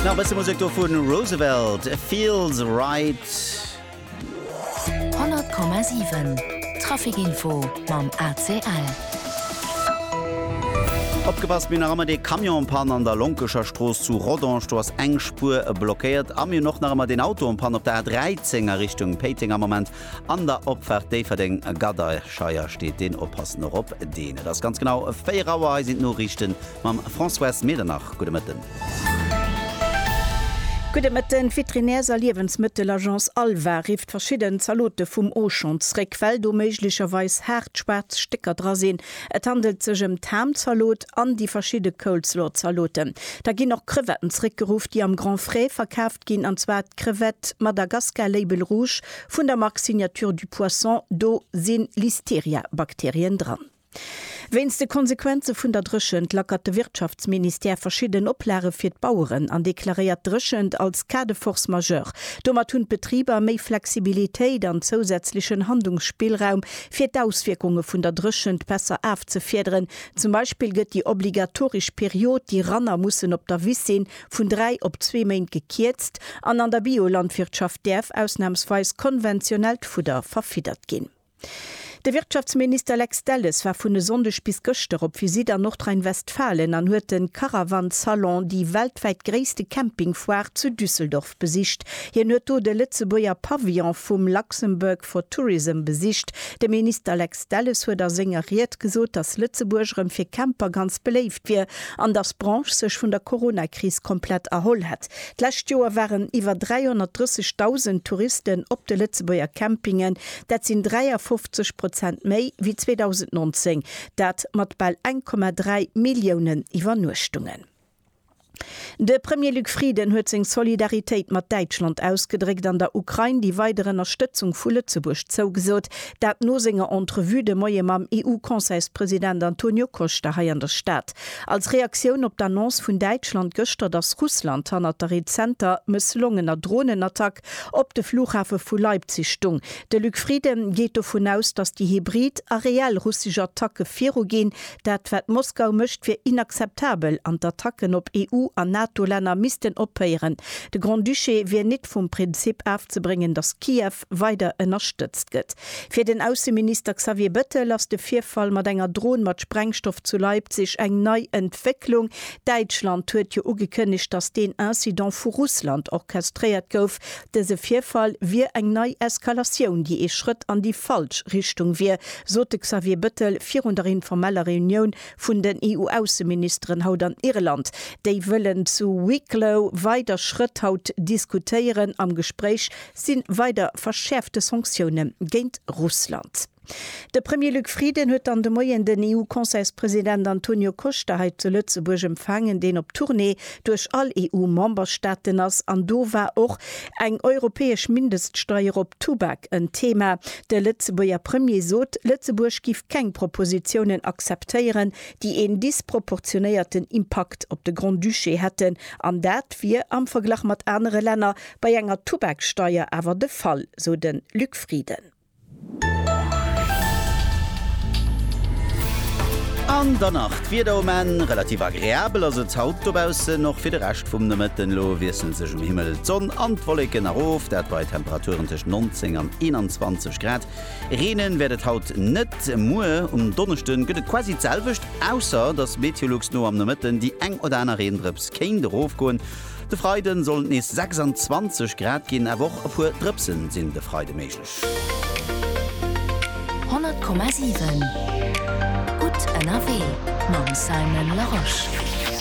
Nach e bësse Musek do vu Roosevelt, Feels Right. 100,7 Trafikinfo mam ACL. Opgepasst, mir hunn nach ëmmer dee Camion en panne an der Lonkescher Strooss zu Rodange. Do ass eng Spuer blockéiert. A mir hunn och nach ëmmer deen Auto en panne op der A13 a Richtung Péiteng. Am Moment An der Opfahrt Déifferdeng a Gadaischeier steet deen Oppassen och op deen. Et ass ganz genau 4 Auer. Hei sinn d'Noriichten mam Françoise Medernach. Gudde Mëtten. Gudde Mëtten. D'Veterinärs a Liewensmëttelagence Alva rifft verschidden Zalote vum Auchan zréck, well do méiglecherweis haart schwaarz Stécker dra sinn. Et handelt sech ëm d'Ham-Zalot, an déi verschidde Coleslaw-Zaloten. Da ginn och Crevetten zréckgeruff, déi am Grand Frais verkaaft ginn, an zwar d'Crevette Madagascar Label Rouge vun der Mark Signature du Poisson. Do si Listeria-Bakterien dran. Wéinst de Konsequenze vun der Dréchent lackert de Wirtschaftsministère verschidden Oplage fir d'Baueren an deklaréiert d'Dréchent als Cas de force majeure. Domat hunn d'Betriber méi Flexibilitéit an zousätzlechen Handlungsspillraum, fir d'Auswierkunge vun der Dréchent besser afzefiederen, Zum Beispill gëtt déi obligatoresch Period, déi Ranner mussen op der Wiss sinn, vun dräi op zwee Méint gekierzt an an der Biolandwirtschaft däerf ausnamsweis konventionellt Fudder verfiddert ginn. De Wirtschaftsminister Lex Delles war vun e Sonndeg bis gëschter op Visitt an Nordrhein-Westfalen an huet de Caravan Salon, déi weltwäit gréisste Camping-Foire, zu Düsseldorf Stad besicht. Hien huet do de Lëtzebuerger Pavillon vum Luxembourg for Tourism besicht. De Minister Lex Delles huet a senger Ried gesot, datt Lëtzebuerg erëm fir Camper ganz beléift wier an datt d'Branche sech vun der Corona-Kris komplett erholl hätt. D'lescht Joer waren iwwer 330.000 Touristen op de Lëtzebuerger Campingen. Dat sinn 53 Prozent méi wéi 2019, dat mat bal 1,3 Milliounen Iwwernuechtungen. De Premier Luc Frieden huet seng Solidaritéit mat Däitschland ausgedréckt an der Ukrain déi weider Ënnerstëtzung vu Lëtzebuerg zougesot. Dat no senger Entrevue de Moie mam EU-Conseilspresident Antonio Costa hei an der Stad. Als Reaktioun op d'Annonce vun Däitschland gëschter, datt Russland hannert der rezenter mësslongener Dronenattack op de Flughafe vu Leipzig stung, de Luc Frieden geet dovun aus, datt déi hybrid a reell russesch Attacke viruginn, Dat, wat Moskau mécht, wier inakzeptabel an d'Attacken op EU an NATO-Länner missten ophéieren. De Grand-Duché wier nit vum Prinzip afzebréngen, datt Kiew weider ënnerstëtzt gëtt. Fir den Ausseminister Xavier Bettel ass de Virfall mat enger Dron mat Sprengstoff zu Leipzig eng nei Entwécklung. Däitschland huet jo ugekënnegt, datt deen Incident vu Russland orchestréiert gouf, Dëse Virfall wier eng nei Eskalatioun, déi ee Schrëtt an déi falsch Richtung wier, sot de Xavier Bettel virun der informeller Reunioun vun den EU-Ausseministeren haut an Irland. Déi wëllen zu Wicklow weider Schrëtt haut diskutéieren. Am Gespréich si weider verschäerfte Sanktioune géint Russland. De Premier Luc Frieden huet dann de Moien den EU-Conseilspresident Antonio Costa hei zu Lëtzebuerg empfaangen, deen op Tournée duerch all EU-Memberstaaten ass. An do war och eng europäesch Mindeststeier op Tubak en Thema. De Lëtzebuerger Premier sot, Lëtzebuerg giff keng Propositiounen akzeptéieren, déi een disproportionéierten Impakt op de Grand-Duché hätten. An dat wier am Verglach mat anere Länner bei enger Tubaksteier awer de Fall, sou de Luc Frieden. An dann nach d'Wieder um Enn, Relativ agreabel ass et haut dobaussen, och fir de Rescht vum Nomëtten. Elo wiessele sech um Himmel d'Sonn an d'Wolleken erof, dat bei Temperaturen tëscht 19 an 21 Grad. Reenen wäert et haut net. Muer um Donneschde gëtt et quasi d'selwecht, ausser dass Meteolux no am Nomëtten déi eng oder aner Reendrëps kéint erofgoen. De Freiden sollen et nees 26 Grad ginn, awer och e puer Drëpsen sinn de Freide méiglech. 100,7 gutt ënnerwee mam Simon Larosche.